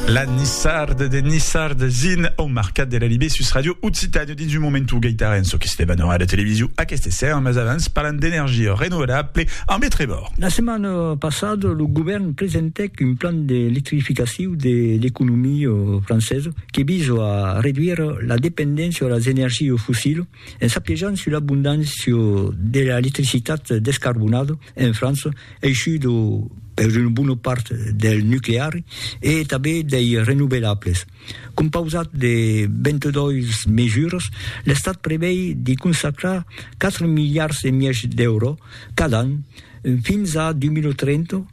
La Nissarde de Nissarde zin au Marcat de la Libé sus Radio Occitània. Dins un moment o gaitarè en çò que se debat en ràdio televisiu aqueste esser, mas avans parlam d'energia renovelable ambe Trevor. La setmana passada lo govèrn presentèc un plan d'electrificaciu de l'economia francesa que visa a reduire la dependéncia a las energias fossilas En s'apiejant sus l'abondància de l'electricitat descarbonada en França, aishuda per una bona part del nucleari e tanben dei renovelables. Compausat de 22 mesuras, l'Estat prevei de consacrar 4 miliards e mièg d'èuro cada an fins a 2030,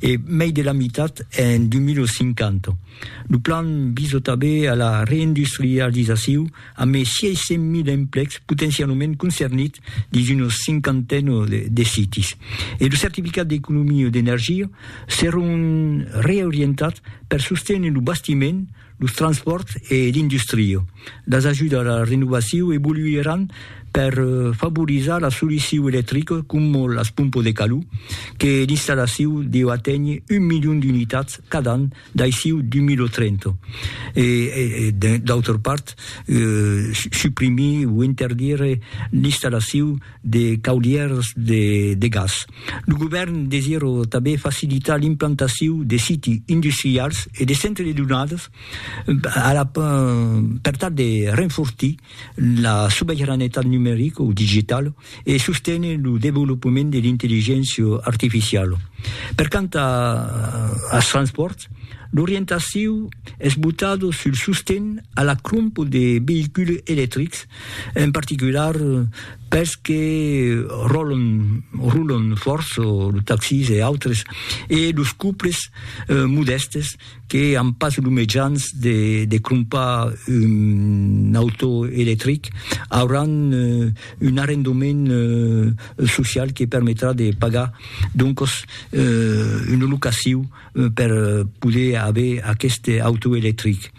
e mei de la mitat en 2050. Lo plan visa tanben a la reindustrializaciu a mei 600.000 emplecs potencialament concernits dins una cinquantena de sites e lo certificat d'economia d'energia serà un reorientat per sostener lo bastiment, los transpòrts e l'industria, las ajudas a la renovacion evoluiràn per favorizar la solucion electrica coma las pompas de calor, que l'installacion deu aténher un milion d'unitats cada an d'aicí 2030, e d'autra part suprimir o interdire l'installacion de caulièrs de gas. Lo govèrn desirò tanben facilitar l'implantacion de siti industrials e de centres de donadas per tal de renfortir la sobeiranetat numerica o digitala e sostener lo desvolopament de l'intelligéncia artificiala. Per quant als transpòrts, l'orientacion es botada sul sosten a la crompa de veïculs electrics, en particular, pels que ròlon, rulon fòrt, los taxis e autres, e los couples modèstes que an pas los mejans de de crompar un auto electric, auràn un arrendament social que permetrà de pagar doncos una locacion. per poder aver aqueste auto electric.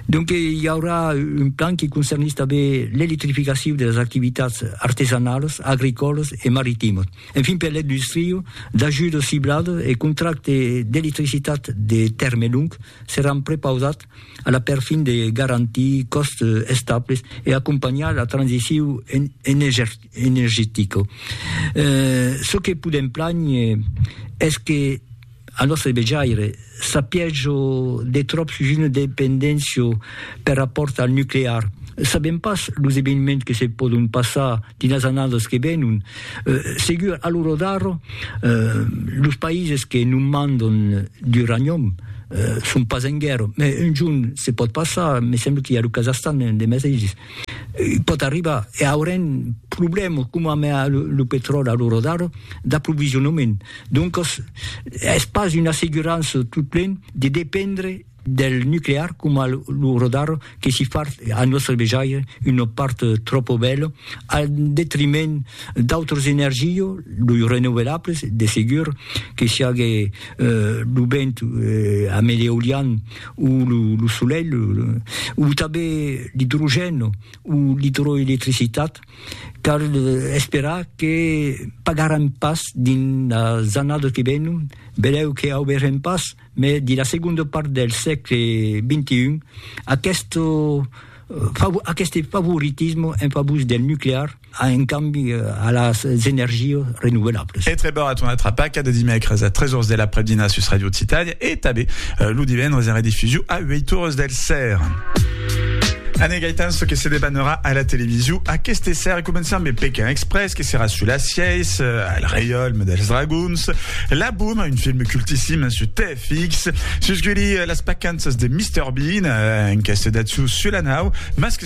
Donc i aurà un plan qui concernís tanben l'electrificacion de las activitats artesanalas, agricòlas e maritimas. Enfin per l'industria, d'ajudas cibladas e contractes d'electricitat de tèrme long seràn prepausats a la perfin de garantir còstes estables e acompanhar la transicion energetica. Çò que podèm plànher es que, Al nòstre vejaire, sapiètz-o de tròp sus una dependéncia per rapòrt al nuclear. Sabèm pas los eveniments que se pòdon passar dins las annadas que venon. Segur, a l'ora d'ara, los païses que non mandon d'uranium son pas en guèrra, mas un jorn se pòt passar, me sembla qu'i a lo Kazahstan de mesaisses. Pòt arribar, e aurem problèmas coma mea lo petròli a l'ora d'ara, d'aprovisionament. Doncas, es pas una assegurança totplen de dependre del nuclear coma a l'ora d'ara, que si fa a nòstre vejaire una part tròpa bèla al detriment d'autras energias, los renouvelables, de segur, que siágue lo vent e a mel'eolian, ou le soleil, ou tanben l'hydrogène ou l'hydroélectricitat, cal esperar que pagarem pas dins las annadas que venon, benlèu que auberem pas, mai dins la segonda part del sègle XXI, aqueste favoritisme en favor del nuclear, a un cambi a las energias renovelables. E treba a ton atrapaca de dimècres a 3 ors de l'aprèp-dinar sus Radio Occitània e tanben lo divendres en redifusiu a 8 ores del ser. Anne Gaetan, ce que se debanera à la télévision, à qu'este serre commençant mes Pékin Express, qui sera sous la sièce, euh, à le Rayol, Models Dragons, La Boom, un film cultissime sur TFX, Susguli, euh, Las Pacances de Mr. Bean, euh, un casse d'Atsu sur la nau, Masque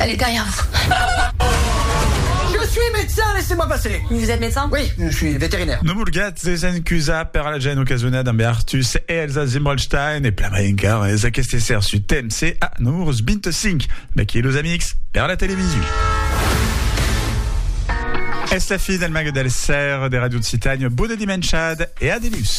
Allez derrière vous. Je suis médecin, laissez-moi passer. Vous êtes médecin? Oui, je suis vétérinaire. No vulguètz desencusar per la gent ocasonada ambe Artus e Elsa Zimmelstein e plan mai encara es aqueste esser su temps e a Numurus 25, d'aquí los amics per la television. Es la fin del Mague del Ser de Radio Occitània, bona dimenchada e adeus!